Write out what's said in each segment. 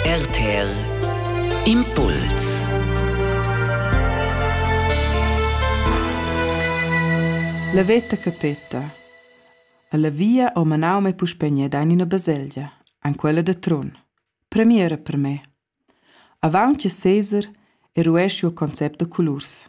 RTL Impuls La veta che peta. Alla via ho manau me puspegna da in ina baselgia, an quella de Trun. Premiera per me. Avaunt che Caesar eruesci il concept de colurs.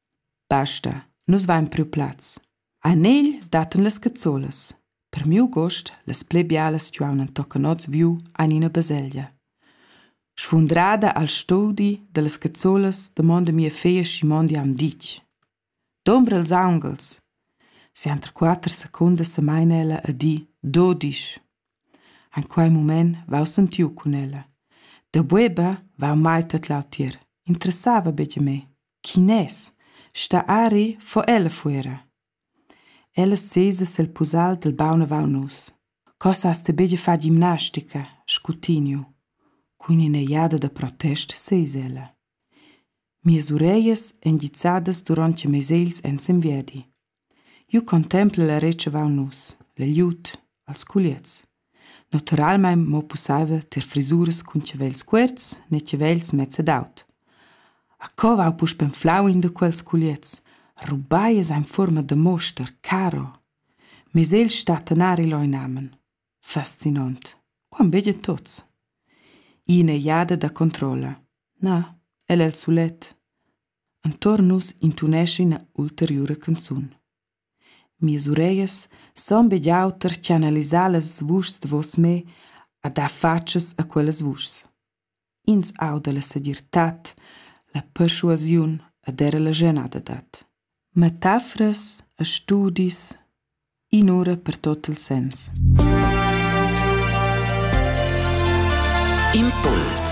Basta, nus vain priu plaz. A negl dattan las cazzolas. Per miu gust, las pli bialas stuaun tocan oz viu ein ina baselgia. Sfundrada al studi dallas cazzolas damonda mia feglia Simon di am ditg. Dombra ils aungels. Sienter quater secundas semaina ella a di do disch. En quei mument vau sentiu cun ella. Da bueba vau mai tedlau tier. Interessava betg me. Chi n'es stà ari fo ella fuera. Ella sesa sel pusal dal baun avaunt nus. Co s'hast ti be far gimnastica, scutignu. Cun ina jada da protest seis ella. Mias ureglias èn gizzadas durant che mes egls èn sin viadi. Jeu contempel e retscheval nus, la glieud, els culiez. Naturalmein mo pusseivel tier frisuras cun chavels cuorts ne chavels mezs ed aut. A co vau puspei enflau in da quels culiez? Rubai es ein fuorma da moster, caro. Mes el stat anari leu inamen. Fascinont. Quant begia tots. Ina jada da controlla. Na, el el sulet. Entuorn nus intunescha ina ulteriura canzun. Mias ureglias san be jau tercianalisar las vuschs davos me a dar fatschas a quellas vuschs. Ins auda la segirtad, la perschuasiun ed era la genada dad. Metaforas e studis, in'ura per tot il sens. Impuls